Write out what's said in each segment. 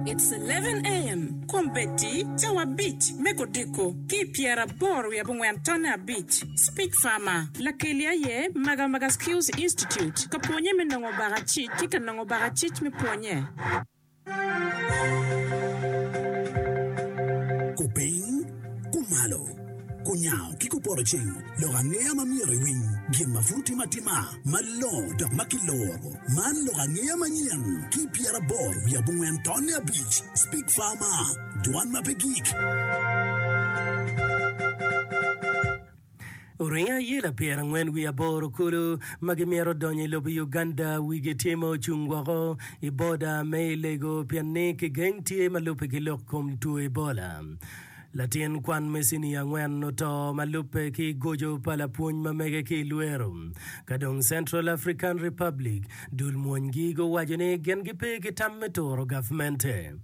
It's eleven AM Kombeddi cawa abic me kodiko ki i pyeraboro wiye abongwen tonne abic Speech Farmer Lakeli aye Maga Maga Skills Institute ka pwonye me nongo baka cic ki ka nongo baka cic me pwonye. Kupiny, kumalo, kunyango ki kupoto ceng lok angeya ma myero iwiny gin ma pud timo atima. Malongo dok ma kiloro. Man lok angeya manyen ki pyeraboro wiye abongwen tonne abic. Speak Farmer, Dwan ma pe gik. Oringo ayela pyerangwen wiye aboro kulu ma gimito donyo i lobo Uganda wigi tye ma ocung woko i boda me i lego pien ni kigeng tye ma lubbe ki lok kom two Ebola. Latin kwan me cinia angwen oto ma lubbe ki goco pa lapwony ma mege ki i lwero. Ka dong Central African Republic, dul mwonygi guwaco ni gin gipe ki tam me turo gavmente.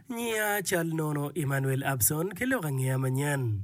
Nyia cal nono Emmanuel Abson ki lok angeya manyen.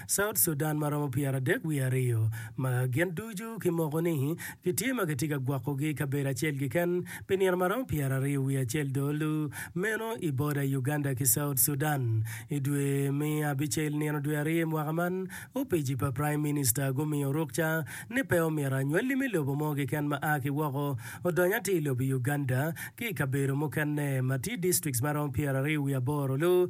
South Sudan ma romo pyeradek wiye aryo, ma gin ducu kimoko ni gitye ma kitye ka gwokogi i kabedo acel keken pi nino ma romo pyeraryo wiye acel dong olu meno i boda Uganda ki South Sudan. I dwe me abicel nino dwe aryo mwaka man, opici pa Prime Minister gumiyo rukca ni pe omyero anywali me lobo mo keken ma a ki woko odony atir i lobo Uganda ki i kabedo mukene ma tye districts ma romo pyeraryo wiye aboro olu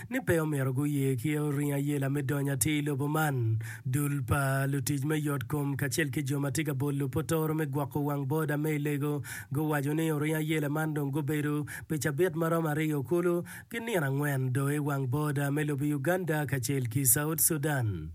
ni pe omyero guye ki oringo ayela me donyo atir i lobo man. Dul pa lutic me yotkom kacel ki jo ma tye ka bolo potoro me gwoko wang boda me i Lego guwaco ni oringo ayela man dong gubedo pi cabit ma romo aryo kulu ki nino angwen doo i wang boda me lobo Uganda kacel ki South Sudan.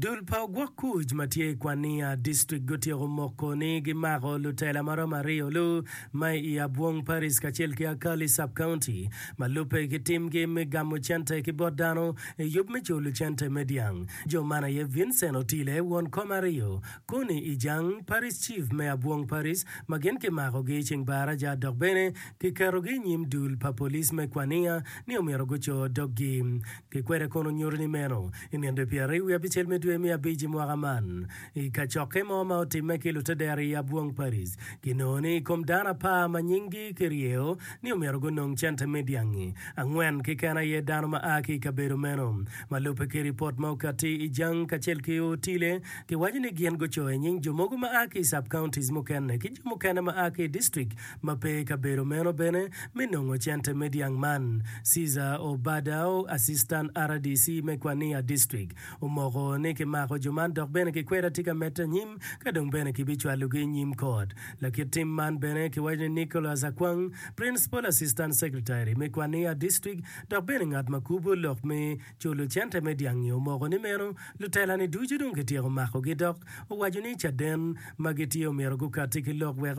Dul pa ogwok kuc ma tye i Kwania District gutyeko moko ni gimako lutela ma romo aryo lu ma i Abwong Parish kacel ki Akali Sub County ma lubbe ki timgi me gamo cente ki bot dano i yub me culo cente me dyang. Jo man aye Vincent Otile, won kom aryo, Conny Ijang, Parish Chief me Abwong Parish, ma gin kimakogi i ceng Baraja dok bene kiketogi i nyim dul pa police me Kwania ni omyero guco doggi. Pi kwede kono nyuto ni meno? I nino dwe pyeraryo wiye abicel me dwe me abic i mwaka man, i kacokke mo ma otimme ki lutedera i Abwong Paris, kinongo ni i kom dano apar ma nyinggi kiryeyo ni omyero gunong cente me dyangi, angwen keken aye dano ma a ki i kabedo meno. Ma lubbe ki ripot ma okatti i Jang kacel ki Otile, giwaco ni gin gucoyo nying jo mogo ma a ki i sub-counties mukene ki jo mukene ma a ki i district ma pe i kabedo meno bene me nongo cente me dyang man. Cesar Obadao, Assistant RDC me Kwania District, omoko ni kimako jo man dok bene kikweda tye ka medde anyim ka dong bene kibicwalogi i nyim kot. Lakit tim man bene kiwaco ni Nicholas Akwang, Principal Assistant Secretary me Kwania District dok bene ngat ma kubo lok me culo cente me dyang-ngi omoko ni meno lutela-ni ducu dong kityeko makogi dok owaco ni caden ma gitye omyero gukatti ki lok wek